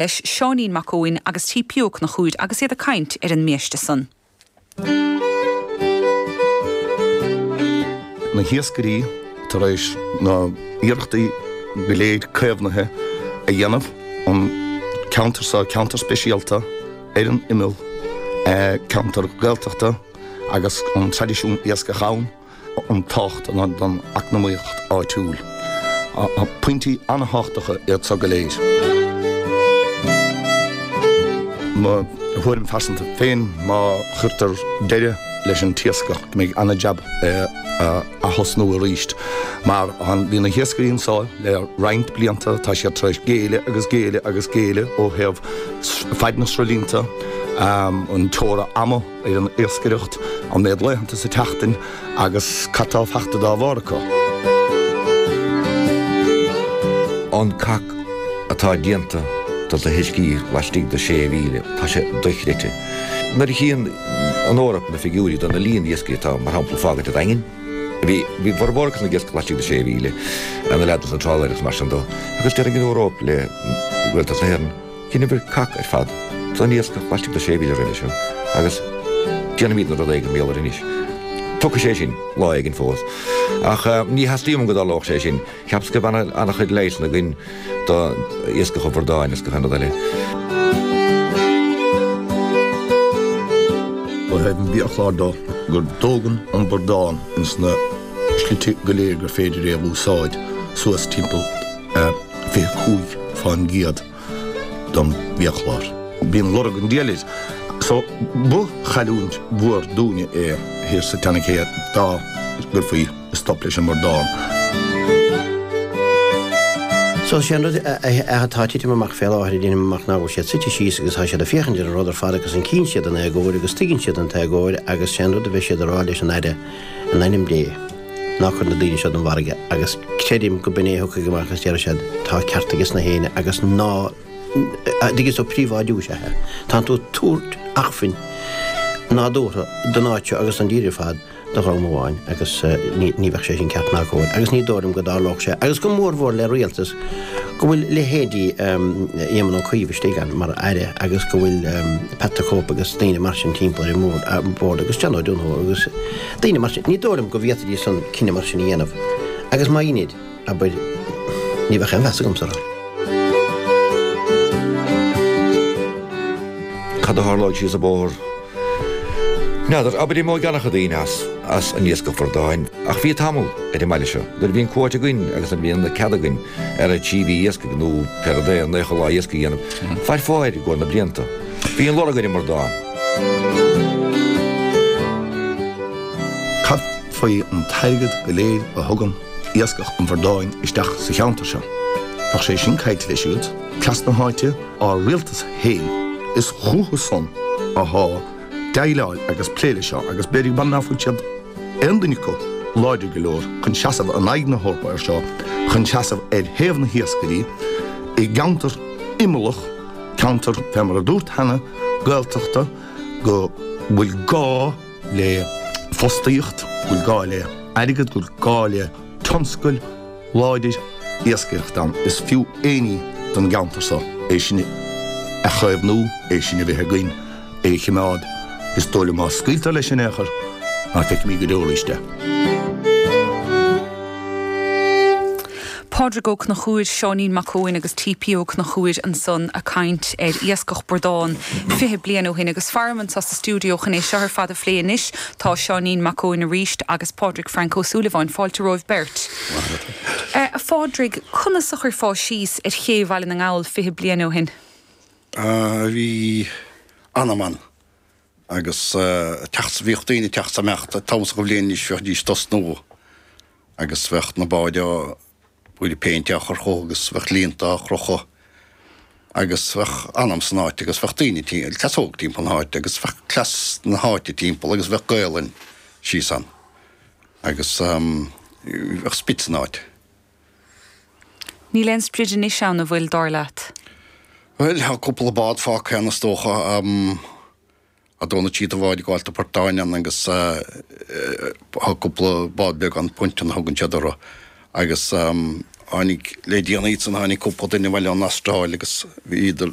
leis Seáinín Mac Eoin agus T.P. Ó Conchúir agus iad ag caint ar an mbiaiste san. na hiascairí tar éis na n-iarrachtaí go léir caomhnaithe a dhéanamh an ceantar seo, ceantar speisialta ar an imeall, ceantar Gaeltachta agus an traidisiún iascaigh ann. an tábhacht don eacnamaíocht áitiúil. Pointí an-thábhachtacha iad so go léir. Mo thuairim phearsanta féin, má chuirtear deireadh leis an t-iascach, go mbeidh an-jab é a thosnú arís. Mar bhí na hiascairí anso le roinnt blianta, tá siad tar éis géilleadh agus géilleadh agus géilleadh ó thaobh faid na sruthlíonta, an teora ama, ar an iascaireacht, an méid laethanta sa tseachtain agus cad tá fachta dá bharr acu. An cac atá déanta do na huiscí laistigh de sé mhíle, tá sé dochreidte. Nuair a chíonn an Eoraip na figiúirí do na líon iascairí atá mar shampla fágtha i Daingean, bhí bhí a bhformhór acu san ag iascach laistigh de sé mhíle, an leathadh an trálaer agus mar sin dó, agus deir an Eoraip le Rialtas na hÉireann, Dheineabhair cac ar fad don iascach laistigh de sé mhíle roimhe seo agus déanfaimidne rud éigin mar gheall air anois. Tiocfaidh sé sin lá éigin fós. Ach ní theastaíonn uaim go dtarlódh sé sin. Cheapas go mbeadh an-chuid leigheasanna againn do iascach an bhradáin agus gach aon rud eile. Ba é an biachlár dó go dtógann an bradán ins na slite go léir gur féidir é a úsáid suas timpeall 25% don bhiachlár. Bíonn lorg an diabhail air so ba chailliúint mhór dúinne é thiar sa tSean-Ché dá gcuirfí stop leis an mbradán. So sé an rud é atá titim amach fé láthair deinim amach ná go bhfuil siad suite síos agus tá siad ag féachaint ar an rud ar fad agus cíonn siad an éagóir agus tuigeann siad an t-éagóir agus sé an rud a bheidh siad á rá leis an Aire in ainm Dé. Ná cuir na daoine seo don bhfarraige agus creidim go b'in é a thiocfaidh amach is déarfaidh siad, 'Tá ceart aige sna héinne agus ná dtig so príobháidiú is ea é. Tánn tú ag tabhairt acmhainn nádúrtha don áit seo agus an tír ar fad do dhream amháin agus ní bheadh sé sin ceart ná cóir. Agus ní dóigh liom go dtarlódh sé. Agus go mórmhór le rialtas go bhfuil leithéidí Éamon Ó Cuív istigh ann mar aire agus go bhfuil Pat the Cope agus daoine mar sin timpeall ar an mbord agus John O'Donoghue agus Daoine mar sin, ní dóigh liom go bhféadfaidís an cinneadh mar sin a dhéanamh. Agus má dheinid, abair, ní bheadh aon mheas agamsa orthu. Cad a tharlóidh síos an bóthar? N'fheadar, abair imeoidh ana-chuid daoine as, as an iascach bradán. Ach bhí tamall ar an mbaile seo, nuair a bhí an cuóta againn agus ná bíonn cead againn ach trí mhí iascaigh nó b'fhéidir naocha lá iascaigh a dhéanamh, fair fáir i gcomhair na blianta. Bíonn lorg ar an mbradán. Cad faoi an t-airgead go léir a thugann iascach an bhradáin isteach sa cheantar seo? Bheadh sé sin caillte leis siúd, cleas na háite, ár rialtas féin. Is chucu san athá déileáil agus plé leis seo agus b'fhéidir ná fuil siad, aon duine acu, láidir go leor chun seasamh in aghaidh na hEorpa air seo, chun seasamh ar thaobh na hiascairí i gceantar imeallach, ceantar, fé mar a dúrt cheana, Gaeltachta, go bhfuil gá le fostaíocht, go bhfuil gá le airgead, go bhfuil gá le tionscail láidir iascaireacht ann. Is fiú éinní don gceantar seo, é sin a chaomhnú, é sin a bheith againn. é a chimeád, is dóigh liom, má scaoiltear leis in aon chor, ná feicfimíd go deo arís é. Pádraig Ó Conchúir, Seáinín Mac Eoin agus TP Ó Conchúir ansan a' caint ar Iascach Bradán fiche bliain ó shin agus faram anseo sa stiúideo chun é seo ar fad a phlé anois. Tá Seáinín Mac Eoin arís agus Pádraig Frank Ó Súilleabháin. Fáilte romhaibh beirt. A Phádraig, conas a chuirfeá síos ar Ché Bhaile na nGall fiche bliain ó shin? bhí anam ann agus teacht, bhíodh daoine ag teacht 's ag imeacht, an t-am so do bhliain anois bheidís ag tosnú agus bheadh na báid á, bheadh péint á chur orthu agus bheadh líonta á chrochadh agus bheadh anam san áit agus bheadh daoine tí, cleas óg timpeall na háite agus bheadh cleas na háite timpeall agus bheadh Gaolainn síos ann agus bheadh sprid san áit. Níl aon sprid anois ann, a' bhfuil, dar leat? Bhuel, thá cúpla bád fágtha ann, is dócha, a' dó nó trí de bháid ag gabháilt do phortáin ann agus thá cúpla bád beag ann, punt a thugann siad orthu. Agus tháinig, le déanaí ansan, tháinig cúpla duine abhaile ón Astráil agus bhíodar